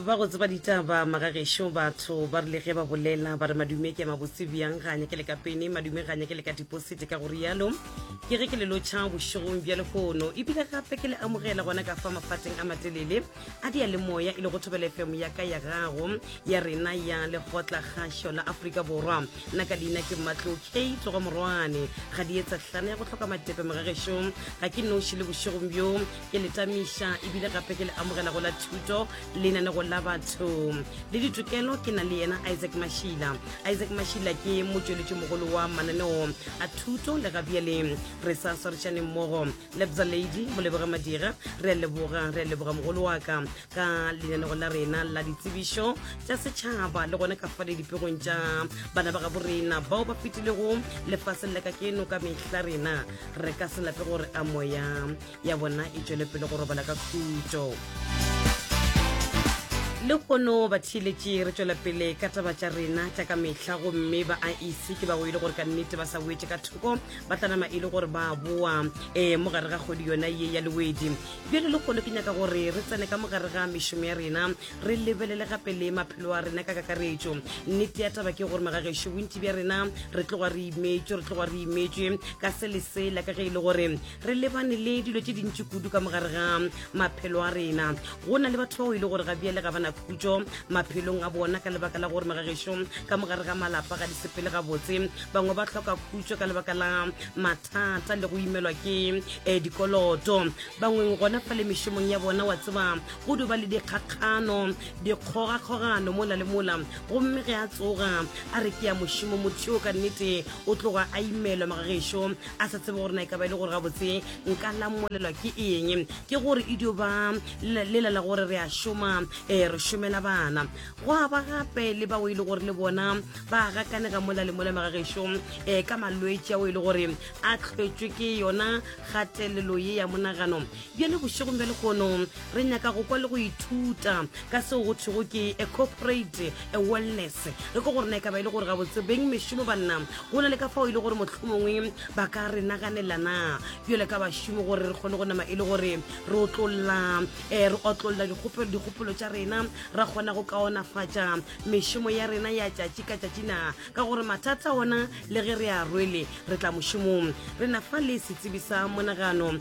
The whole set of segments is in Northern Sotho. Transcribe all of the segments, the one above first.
ba go tseba ditaba magagešo batho ba rile ge ba bolela ba re madume ke mabotse bjang ga nyake le ka pene madume ga nyake le ka diposite ka go rialo ke ge ke le lotšha bošegong bja lehono ebile gape ke le amogela gona ka fa mafateng a matelele a dia le moya e le go thobela fm ya ka ya gago ya rena ya lekgotla kgašo la aforika borwa nna ka leina ke mmatlo k tlogo morwane ga di etsa tlana ya go tlhoka matepe magagešong ga ke noši le bošegong bjo ke le tamiša ebile gape ke le amogela go la thuto lenanego la batho le ditokelo ke na le yena isaac mashila isaac mashila ke motšweletši mogolo wa mananeo a thuto le gabjale re sa swarišaneng mmogo lebza lady moleboge madira re a leboga re a leboga mogolo wa ka ka lenanego la rena la ditsebišo tša setšhaba le gone ka fale dipegong tša bana ba gabo rena bao ba fetilego lefaseng la ka keno ka mehla rena re ka se lape gore a moya ya bona e tšwele pele go robala ka khutšo le kgono ba theeletše re tšwela pele ka taba tša rena tša ka mehla gomme ba a ise ke ba o e le gore ka nnete ba sa boetse ka thoko ba tlanama e le gore ba boa um mo gare ga kgodi yona ye ya lewedi bjale le kgono ke nyaka gore re tsene ka mo gare ga mešomo ya rena re lebelele gape le maphelo a rena ka kakaretšo nnete ya taba ke gore magagešo bontši bja rena re tloga re imetšwe re tloga re imetšwe ka se le sela ka ge e le gore re lebane le dilo tše dintši kudu ka mogare ga maphelo a rena go na le batho bao e le gore ga bjale ga bana khutso maphelong a bona ka lebaka la gore magagešo ka mogare ga malapa ga di sepele gabotse bangwe ba tlhoka khutso ka lebaka la mathata le go imelwa ke um dikoloto bangweng gona fa le mešomong ya bona wa tseba go duba le dikgakgano dikgogakgogano mola le mola gomme ge a tsoga a re ke ya mošomo motho yo ka nnete o tloga a imelwa magagešo a sa tsebe gore na e ka ba e le gore gabotse nka lamolelwa ke eng ke gore e dio ba lela la gore re a šoma um re šomela bana go a ba gape le bao e le gore le bona ba gakanega mola le mola magagešo um ka malwetse ao e le gore a tlhwetswe ke yona kgatelelo ye ya monagano Bjale bošegong bja lehono re nyaka go kwa le go ithuta ka seo go thwego ke a corporate a wellness re ko gore na e ka ba e le gore ga botsebeng mešomo banna go na le ka fao e le gore mohlomongwe ba ka re naganelana bjale ka bašomo gore re kgone go nama e le gore re otlolola um re otlolola dikgopolo tša rena ra kgona go kaonafatša mešomo ya rena ya tšatši ka tšatši na ka gore mathata ona le ge re a rwele re tla mošomong re na fa le setsebi sa monagano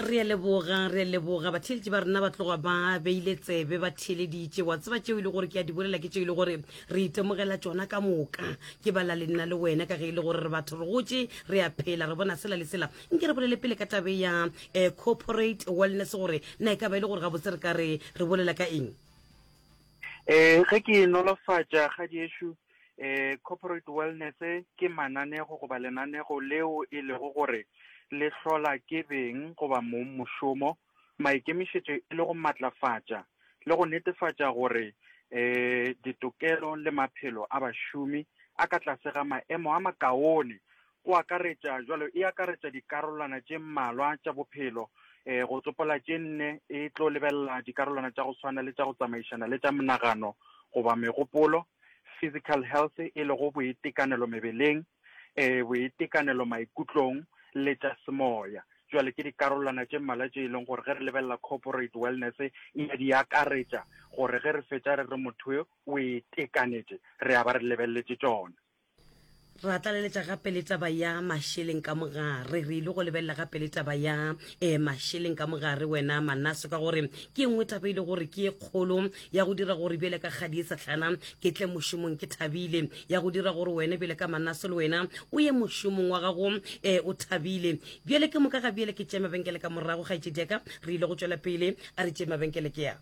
re a leboga re a leboga batheeletši ba rena ba tloga ba beile tsebe ba theeleditše wa tseba tšeo e le gore ke a di bolela ke tšeo e le gore re itemogela tšona ka moka ke bala le nna le wena ka ge e le gore re batho re gotše re a phela re bona sela le sela nke re bolele pele ka tabe ya eh, corporate wellness gore na e ka ba e le gore gabotse re ka re re bolela ka eng um ge ke nolofatša kgadi ešo eh corporate wellness ke mananego goba lenanego leo e lego gore le hlola ke beng goba mong mošomo maikemišetšo e le go matlafatša le go netefatša gore eh ditokelo le maphelo a bašomi a ka tlase ga maemo a makaone Go akaretša, jwalo e akaretša dikarolwana tše mmalwa tša bophelo, e, go tsopola tše nne, e tlo lebelela dikarolwana tša go swana le tša go tsamaišana le tša monagano goba megopolo, physical health, e lego boitekanelo mebeleng, e, boitekanelo maikutlong, le tša semoya. Jwale ke dikarolwana tše mmalwa tše e leng gore ge re lebelela corporate wellness e a di akaretša, gore ge re fetša re re motho yo o itekanetše, re a ba re lebeleletše tšona. ra tlaleletša gape le taba ya mašeleng ka mogare re ile go lebelela gape le taba ya um eh, mašeleng ka mogare wena manaso ka gore ke nngwe taba e le gore ke e kgolo ya go dira gore bjele ka kgadi e setlhana ke tle mošomong ke thabile ya go dira gore wena bjele ka manaso le wena o ye mošomong wa gago um o thabile bjele ke moka ga bjele ke tšee mabenkele ka morago ga etsediaka re ile go tšwela pele a re tšee mabenkele ke ya